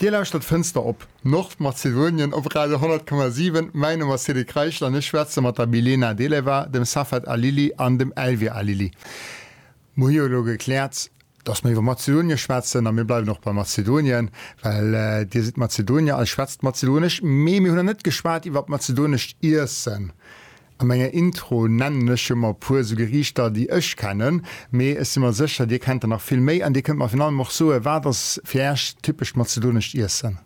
Dir lauschtert Fënster op Nordmazedonien op Radio 10,7. Mäin Numm ass Cedric Reichel an ech schwätze mat der Milena Deleva, dem Safet Alili an dem Elvir Alili. Mer hu jo elo gekläert, datt mer iwwer Mazedonien schwätzen a mir bleiwen och bei Mazedonien, well Dir sidd Mazedonier a schwätzt Mazedonesch. Mee mir hunn nach net geschwat iwwer mazedonescht Iessen. A menger Intro nennen ech jo mol e puer esou Geriichter, déi ech kennen, mee ech si mer sécher, Dir kennt der nach vill méi an Dir kënnt mer virun allem och soen, wat ass fir Iech typescht mazedonescht Iessen?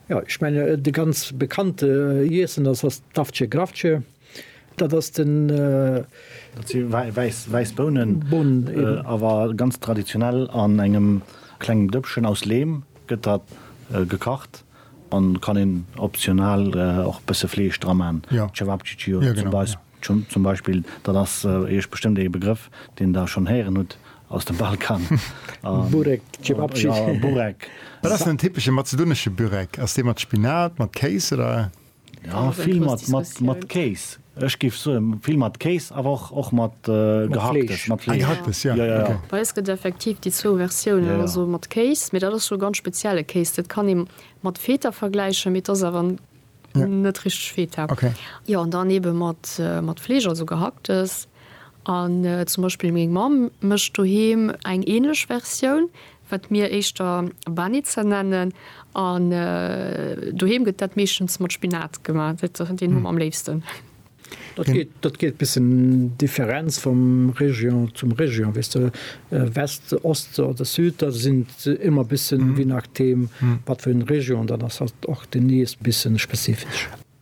Jo, ech menge de ganz bekannte Iessen, dat ass d'Avce gravce. Dat ass den. Dat si wäiss Bounen. Bounen, eben. Awer ganz traditionell an engem klengen Dëppchen aus Leem gëtt dat gekacht. An kann een optional och bësse Fleesch dra maan, Cevapcici oder Cebajs zum Beispill, dat ass iech bestëmmt ee Begrëff deen der schonn héieren hutt aus dem Balkan. Burek, Cevapcici. Burek. Wat ass den typesche mazedonesche Burek? Ass dee mat Spinat, mat Kéis oder? Jo vill mat mat mat Kéis, ech géif soen vill mat Kéis awer och och mat gehacktes, mat Fleesch, gehacktes jo ok. Bei eis gëtt effektiv déi zwou Versiounen, also mat Kéis, mee dat ass scho ganz spezielle Kéis, dat kann ee mat Feta vergläichen, mee et ass awer net richteg Feta, jo an dann ebe mat mat Fleesch, also gehacktes an zum Beispill meng Mamm mécht doheem eng änlech Versioun. wat mir éischter Banitzer nennen, an doheem gëtt dat meeschtens mat Spinat gemaach, deen hu mer am léifsten. Dat geet bëssen Differenz vum Région zum Région, weess de, West, Ost oder Süd, da sinn et ëmmer bëssen, je nachdeem wat fir eng Région dat ass, och déi nees bëssen spezifesch.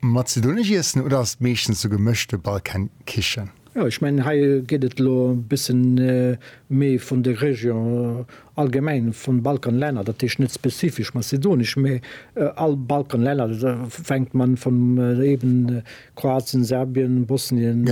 Mat Zydonisch iessen oder ass et meeschtens sou gemëschte Balkankichen? Jo, ech mengen hei geet et elo e bëssen méi vun de Région allgemeng vun Balkanlänner, dat heescht net spezifesch mazedonisch, mä all Balkanlänner, fänkt man vun eben Kroatien, Serbien, Bosnien,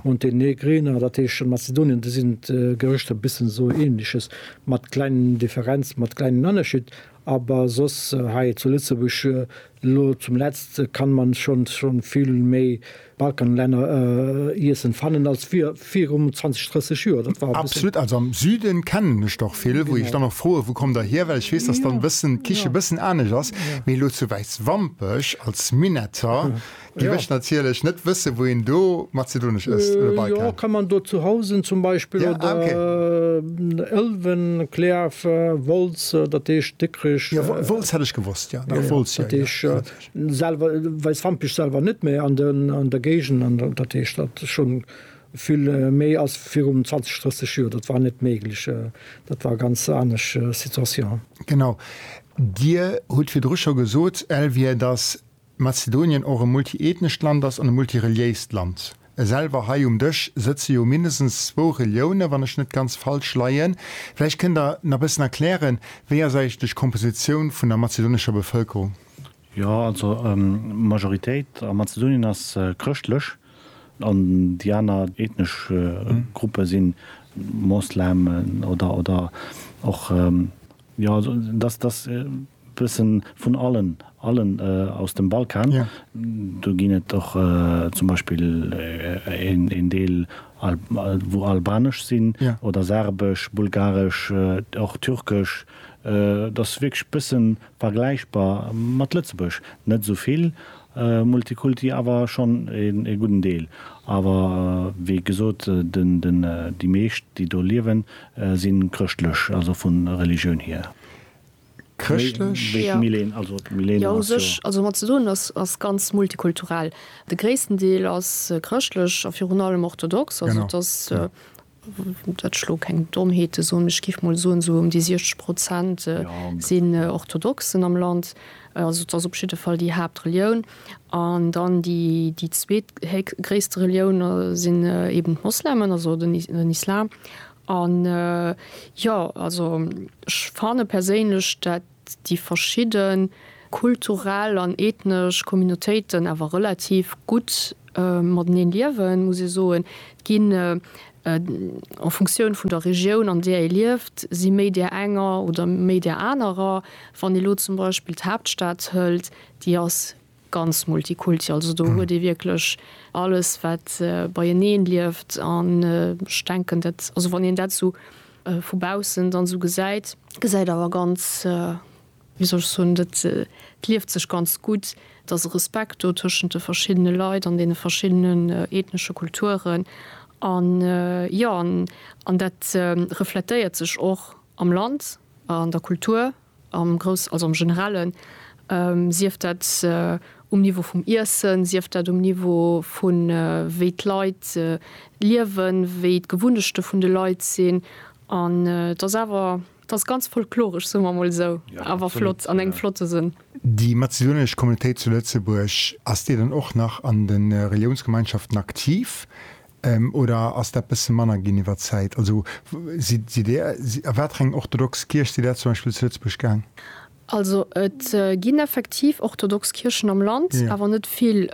Montenegrin, dat heescht Mazedonien, do sinn d'Gerichter bëssen sou ähnliches, mat kleng Differenz, mat klengen Ënnerscheed, aber soss hei zu Lëtzebuerg Lo zum letzt kann man schon schon vill méi Balkanlänner iessen fannen als virum 20, 30 Joer. Dat war e bëssen. Absolut, also am Süden kennen ech der vill, wou ech dann och froen, wou kommt der hier, well ech weess, dass dann bëssen d'Kichen bëssen anescht ass, mee lo zu Wäiswampech als Minnetter. Di mécht natierlech net wësse wou een do Mazedonesch ësst oder bei kann. Jo kann man do zu Housen zum Beispill oder Ëlwen, Clerf, Wolz, dat heescht Dikrech. Jo Wolz hätt ech gewosst jo. Dat Wolz jo. Dat heescht selwer Weißwampech selwer net mä an der Géigend an dat heescht dat schonn vill méi ass virum 20, 30 Joer. Dat war net méiglech. Dat war ganz anesch Situation. Genau. Dir hutt virdru scho gesot Elvire datt. Mazedonien och e multiethnescht Land ass an e multireliéist Land. Selwer hei um Dësch sëtze jo mindestens zwou Reliounen, wann ech net ganz falsch leien. Vläicht kënnt Der nach e bëssen erklären, wéi ass eigentlech d'Kompositioun vun der mazedonescher Bevëlkerung? Jo, also d'Majoritéit a Mazedonien ass chrëschtlech an déi aner ethnesch Gruppe si Moslemen oder och, jo, also dass, dass. Bëssen vun allen, allen aus dem Balkan. Do ginn et och zum Beispill een Deel wou albanesch sinn oder serbesch, bulgaresch, och türkesch. Dat ass wierklech bëssen vergläichbar mat Lëtzebuerg. Net esou vill Multikulti, awer schonn ee gudden Deel. Awer wéi gesot, déi meescht déi do liewen, si chrëschtlech, also vu Religioun hier. Chrëschtlech? Wéi d'Milene, also d'Milene ass jo. Jo, u sech, also Mazedonien ass, ass ganz multikulturell. De gréissten Deel ass chrëschtlech a virun allem orthodox. Genau. Also et ass, dat ech elo keng Dommheete soen, mee ech géif mol soen, esou ëm déi 60 Prozent sinn Orthodoxen am Land. Also et ass op jidde Fall déi Haaptrelioun. An dann déi, déi zweet héchst, gréisste Relioun sinn eben d'Moslemen, also den Islam. An jo, also ech fanne perséinlech, dat déi verschidde kulturell an ethnesch Communautéiten awer relativ gutt mateneen liewen, muss ee soen. Et ginn, en Funktioun vun der Regioun, an där ee lieft, si méi där enger oder méi där anerer. Wann ee lo zum Beispill d'Haaptstad hëlt, déi ass Ganz Multikulti, also do huet ee wierklech alles wat beieneen lieft an ech denken dat, also wann een dat esou vu baussen dann esou gesäit, gesäit awer ganz, wéi soll ech soen, et lieft sech ganz gutt, et ass e Respekt do tëschent de verschiddene Leit an deene verschiddenen ethnesche Kulturen an jo, an dat refletéiert sech och am Land, an der Kultur Am Grouss, also am Generellen, sief dat um Niveau vum Iessen, sief dat um Niveau vu wéi d'Leit liewen, wéi d'Gewunnechte vun de Leit sinn. An et ass awer, et ass ganz folkloresch, soe mer emol esou, awer flott, an engem flotte Sënn. Déi mazedonesch Communautéit zu Lëtzebuerg, ass déi dann och nach an de Reliounsgemeinschaften aktiv? Oder ass dat bësse manner ginn iwwer d'Zäit? Also sidd Dir, a watereng orthodox Kierch sidd Der zum Beispill zu Lëtzebuerg gaang? Also et ginn effektiv orthodox Kierchen am Land, awer net vill.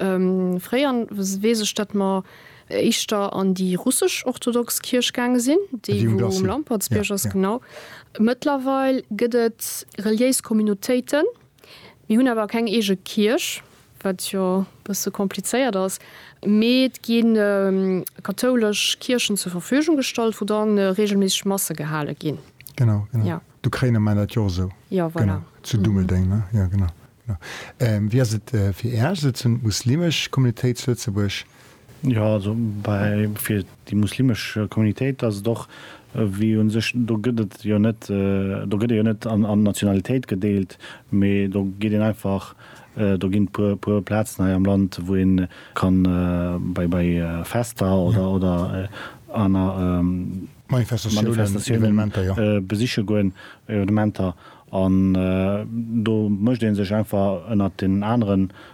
Fréier weess ech, datt mer éischter an déi russesch orthodox Kierch gaange sinn, déi wou um Lampertsbierg ass, genau. Mëttlerweil gëtt et reliéis Communautéiten, mir hunn awer keng eege Kierch. wat jo e bësse komplizéiert ass, mee et gi kathoulesch Kierchen zur Verfügung gestallt, wou dann reegelméisseg Masse gehale ginn. Genau, genau. Jo. D'Ukrainer maachen dat jo och esou. Jo, voilà. Genau, zu Dummeldeng, ne? Jo, genau, genau. Wéi ass et fir Iech, also d'Muslimesch Communautéit zu Lëtzebuerg? Jo, also bei fir déi muslimesch Communitéit ass et och wéi un sech, do gëtt et jo net, do gëtt ee jo net an an Nationalitéit gedeelt, mee do geet een einfach, do ginn puer puer Plazen hei am Land wou een kann bei bei Fester oder oder aner Manifestatiounen besiche goen, Evenementer, an do mécht een sech einfach ënnert den aneren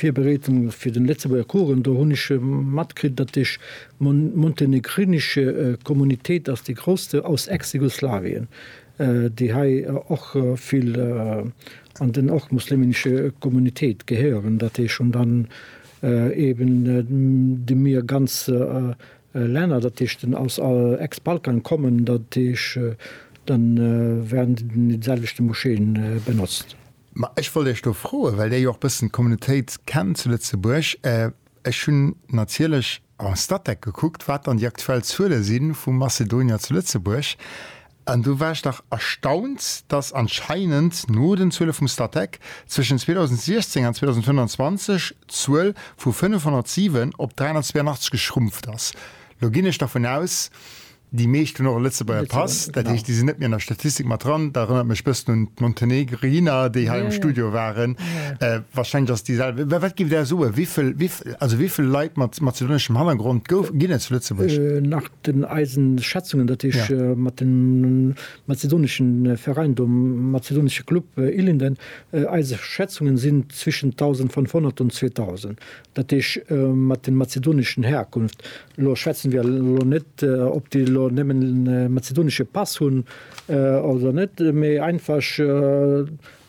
Virbereedung fir den Lëtzebuerger Kuchen, do hunn ech matkritt, datt déch montenegrinesch Kommunitéit ass déi grousste aus Ex-Jugoslawien, déi hei och vill an den och muslimenesche Kommunitéit gehéieren, datt déch hunn dann eben de mir ganz Länner, datt déch den aus Ex-Balkan kommen, datt déch dann wären déi selwechte Moscheeën benotzt. Ma ech wollt Iech do froen, well Dir jo och e bëssen d'Communautéit kennt zu Lëtzebuerg, ech hunn natierlech en Statec gekuckt, wat dann déi aktuell Zuele si vu Mazedonier zu Lëtzebuerg, an do war ech dach erstaunt, datt anscheinend no den Zuele vum Statec zwëschen 2016 an 2025 d'Zuel vu 507 op 382 geschrumpft ass. Lo ginn ech dervun aus, Déi meescht hunn och e Lëtzebuerger Pass, dat heescht, déi sinn net méi an der Statistik mat dran. Dat erënnert mech e bëssen un d'Montenegriner, déi hei am Studio waren. Warscheinlech ass déi selwecht. Mä wat giff Der soen, wéi vill, also wéi vill Leit mat mazedoneschem Hannergrond gouf, ginn et zu Lëtzebuerg? Nach den eisen Schätzungen, dat heescht mat dem mazedoneschen Veräin do, mazedonesche Club Ilinden, eise Schätzungen sinn zwischen 1.500 an 2.000. Dat heesch mat den mazedoneschen Herkunft. Elo schwätzen wir elo net op déi elo nemmen mazedonesche Pass hunn oder net, mee einfasch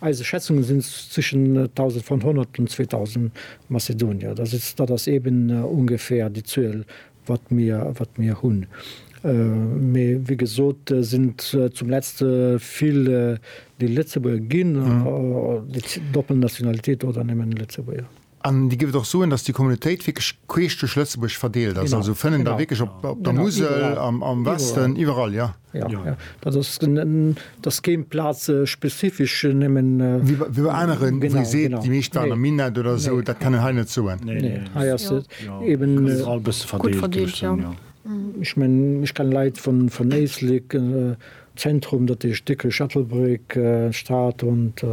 eise Schätzungen sinn es zwischen 1.500 und 2.000 Mazedonier. Dat ass dat ass eben ungefähr déi Zuel wat mir wat mir hunn. Mee wéi gesot sinn zum letzt vill déi Lëtzebuerger ginn, déi doppel Nationalitéit oder nemmen Lëtzebuerger. An Dir géift och soen, datt déi Communautéit wierklech queesch duerch Lëtzebuerg verdeelt ass, also fënnen der wierklech op der Musel, am Westen, iwwerall, jo? Jo, dat ass, et ass keen plazespezifesch nëmmen. Wéi bei aneren, wou Dir seet, déi meescht waren am Minett oder esou, dat kann een hei net soen. Nee, hei ass et eeben. Ass iwwerall e bësse verdeelt, géif ech soen, jo. Ech mengen, ech kenne Leit vun Éislek, Zentrum, dat heescht Dikrech, Ettelbréck, Stad und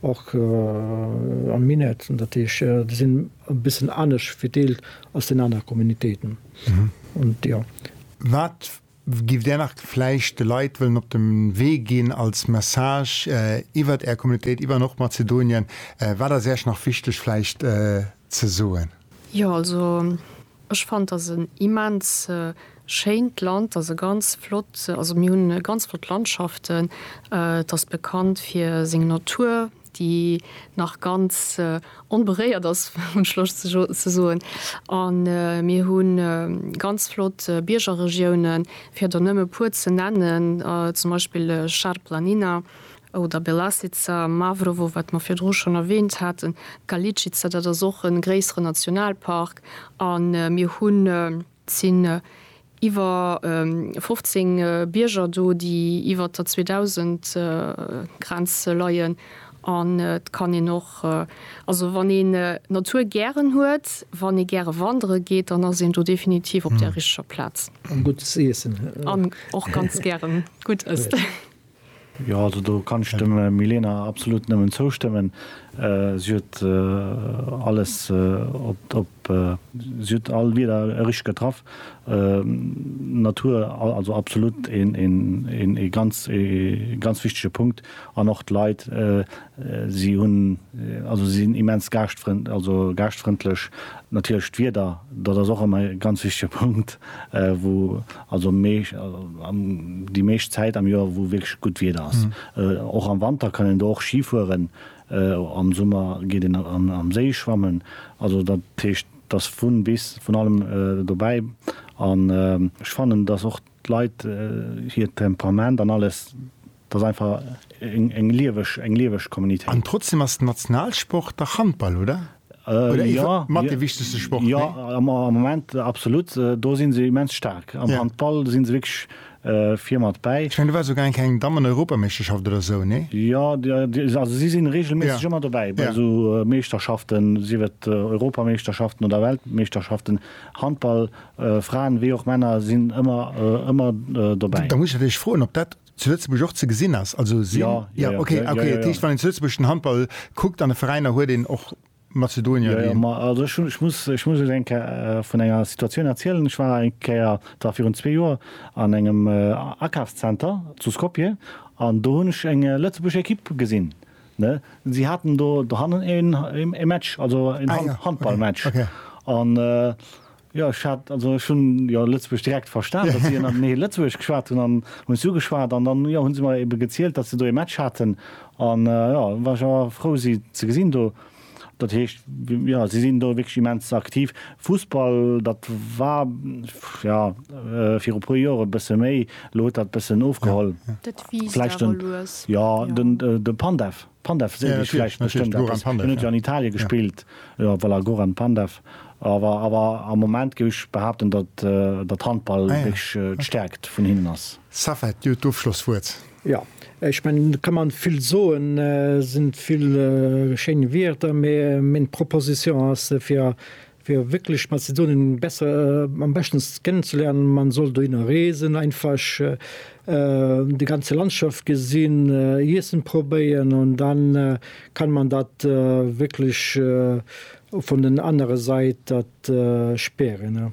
och am Minett. Dat heescht déi sinn e bëssen anescht verdeelt als den aner Communautéiten und jo. Wat giff Där nach vläicht de Leit wëllen op de Wee ginn als Message iwwert Är Communautéit, iwwer och Mazedonien? Wat ass Iech nach wichteg vläicht ze soen? Jo also ech fand dass en immens schéint Land, dass e ganz flott, also mir hunn ganz flott Landschaften, et ass bekannt fir seng Natur déi nach ganz onberéiert ass hunn ech Loscht ze soen an mir hu ganz flott Biergerregiounen fir der nëmme e puer ze nennen, zum Beispill Charplanina oder Belasica, Mavrovo, wat mer virdru schonn erwähnt haten, Galičica, dat ass och e gréisseren Nationalpark, a mir hunn, et sinn iwwer 15 Bierger do, déi iwwert der 2000 Grenz leien, an et kann een och, also wann een d'Natur gären huet, wann ee gäre wandere geet, dann ass een do definitiv op der richteger Plaz. An gutt Iessen. An och ganz gären gutt Ësst. Jo, also do kann ech dem Milena absolut nëmmen zoustëmmen. Si huet alles op, si huet all Wierder richteg getraff. Natur, also absolut ee ganz, ee ganz wichtege Punkt. An och d'Leit, si hunn, also si sinn immens gaaschtfrënd, also gaaschtfrëndlech. Natierlech d'Wieder, dat ass och ëmmer e ganz wichtege Punkt, wou also déi meescht Zäit am Joer, wou wierklech gutt Wieder ass. Och am Wanter kann een do och Ski fueren, am Summer geet een am Séi schwammen. Also dat heescht, et ass vun bis vun allem dobäi. An ech fannen, dass och d'Leit hiert Temperament an alles Dat ass einfach eng lieweg, eng lieweg Communitéit. An trotzdem ass den Nationalsport dach Handball, oder? Oder ee Jo, mat dee wichtegste Sport, nee? Jo, am Moment absolut. Do si se immens staark. Am Handball si se wierklech vir mat bäi. Ech mengen, do war souguer eng Kéier eng Dammen-Europameeschterschaft oder esou, nee? Jo, also si sinn reegelméisseg ëmmer dobäi bei esou Meeschterschaften, sief et Europameeschterschaften oder Weltmeeschterschaften. Handball, Fraen wéi och Männer, sinn ëmmer, ëmmer dobäi. Da muss ech natierlech froen, ob dat zu Lëtzebuerg och ze gesinn ass, also sinn. Ja, ja, ja, okay, ja, okay. Ja, ja, ja. Heescht, wann een lëtzebuergeschen Handball kuckt an de Veräiner, huet een och Mazedonier. Ja, ja, also ich, ich muss, ich muss eng Kéier äh, vun enger Situatioun erzielen. Ich war eng Kéier da virun zwee Joer an engem äh, Akafszenter zu Skopje an do hunn ech eng äh, Lëtzebuerg Ekipp gesinn. Ne? Sie hatten do, do hannen e Match, also en ah, Hand, ja. Handballmatch. Okay. Okay. An äh, Jo, ech hat, also ech hunn jo Lëtzebuerg direkt verstan, datt si ënnert nee Lëtzebuergesch geschwat hunn an hunn ech si ugeschwat an dann, jo, hu se mer ebe gezielt, datt se do ee Match haten an, jo, war ech awer frou si ze gesinn do. Dat heescht, jo, si sinn do wierklech immens aktiv. Fussball, dat war, jo, viru puer Joer e bësse méi, elo huet dat e bëssen ofgeholl. Dat wiisst awer lues. Jo, de Pandev. Pandev seet iech vläicht bestëmmt eppes. Hien huet jo an Italie gespillt. Jo, voilà, Goran Pandev. Awer, awer am Moment géif ech behaapten, datt, datt Handball wierklech d'Stäerkt vun hinnen ass. Safed, dir hutt d'Ofschlosswuert. Jo, ech mengen, do ka man vill soen, sinn vill schéin Wierder, mee meng Proposition ass fir Fir wierklech Mazedonen besser, am beschtens kennenzelernen, man soll dohinner reesen, einfach déi ganze Landschaft gesinn, Iessen probéieren an dann kann man dat wierklech vun den anere Sait dat spären.